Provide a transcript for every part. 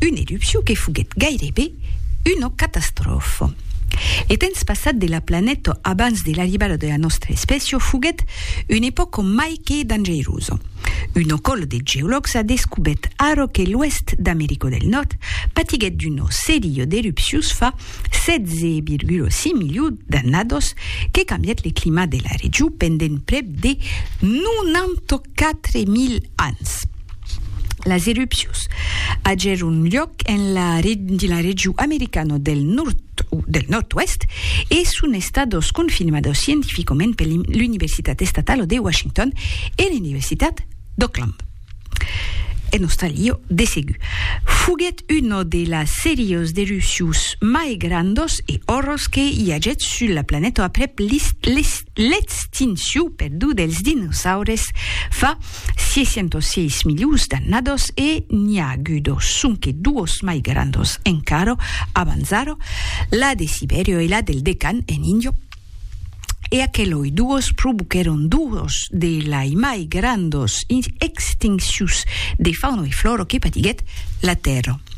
Una erupcion que foguèt gairebe una catastròfa. Lo temps passat de la planeta abans de l'arribada de la nòstra espècia foguèt una epòca mai que dangerosa. Una còla de geològs a descobèt ara que l'oèst d'America del Nòrd patiguèt d'una seria d'erupcions fa 16,5 milions d'annadas que cambièt le clima de la region pendent prèp de 94.000 ans. Las erupcions agèron luòc dins la region americana del Nòrd-Oèst e son estadas confirmadas scientificament per l'Universitat Estatala de Washington e l'Universitat d'Auckland. En Australia, de segur, foguèt una de las serias d'erupcions mai grandas e òrras que i agèt sus la planeta aprèp L'extinciu per du dels dinosaures fa 606 milions d'annados e n'i a agudo sonque duos mai grandos encara abans ara, la de Sibèria e la del Decan en Índia, e aqueloi duos provoquèron duos de lai mai grandos extincius de fauna e flora que patiguèt la Tèrra.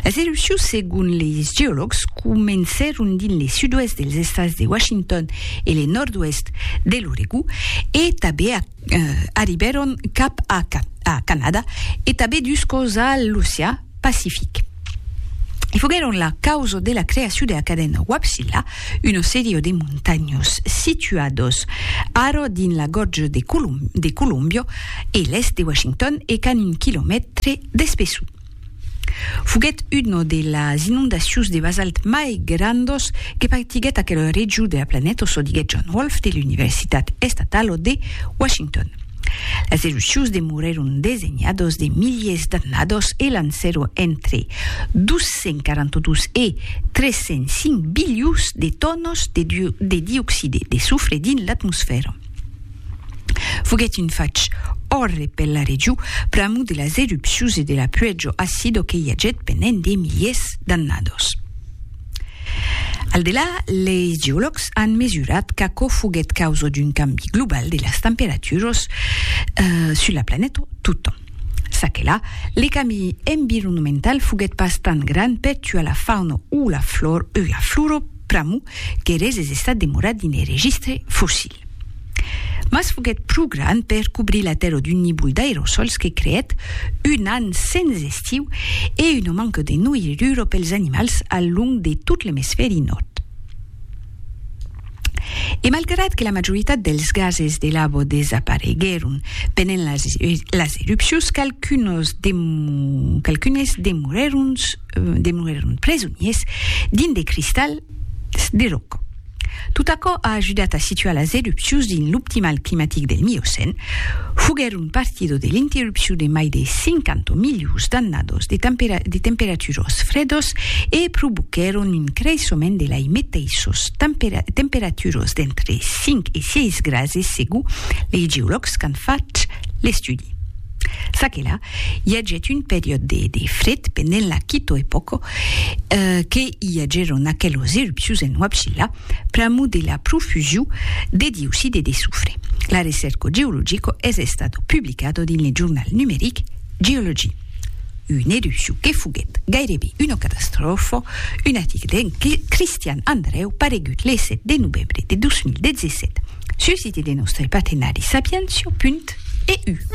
Las erupcions, segon leis geològs, comencèron dins le sud-oèst dels estats de Washington e le nòrd-oèst de l'Oregó e tanben arribèron cap a Canada e tanben dus còps a l'Ocean Pacific. E foguèron la causa de la creacion de la cadena Wapshilla, una sèria de montanhas situadas ara dins la Gorja de Columbia e l'èst de Washington e qu'an un quilomètre Despeçu. Foguèt una de las inondacions de basalt mai grandas que patiguèt aquela region de la planeta, çò diguèt John Wolf de l'Universitat Estatala de Washington. Las erupcions demorèron desenhadas de miliers d'annadas e lancèron entre 242 e 305 bilions de tonas de dioxide de sofre dins l'atmosfèra. Foguèt un fach òrre per la region pr'amor de las erupcions e de la puèjo acido que i agèt pendent de miliers d'annados. Al delà, leis geològs an mesurat qu'aquò foguèt causa d'un cambi global de las temperaturas sus la planeta totjorn. Ça que la, le cambi environnemental foguèt pas tant grand per tuar la fauna o la flora pr'amor qu'eres es estat demorat dins le registre fossil. Mas foguèt pro grand per cobrir la Tèrra d'un nívol d'aerosòls que creèt un an sens estiu e una manca de noirura pels animals al long de tot l'emisfèri nòrd. E malgrat que la majoritat dels gases de lava desapareguèron pendent las erupcions, qualcunes demorèron demorèron presoniers dins de cristals de ròca. Tot aquò a ajudat a situar las erupcions dins l'optimal climatic del Miocèn, foguèron partido de l'interrupcion de mai de 50 milions d'annados de temperatures fredas e provoquèron un creissement de lei meteissas temperatures d'entre 5 e 6 grases segur lei geològs qu'an fach l'estudi. Çaquelà I agèt un periòd de de fred pendent la quito epòco que i agèron aquelos erupcius en Huapchilla pr'amor de la profusiu de dioxide de sofre. L'arecèrco geologico es estato publicado dins le jornal numeric Geology. Un erupciu que foguèt gairebe una catastròfa, un article de Christian Andreu paregut le 7 de novembre de 2017 sul site de nòstre partenari Sapientia. EU.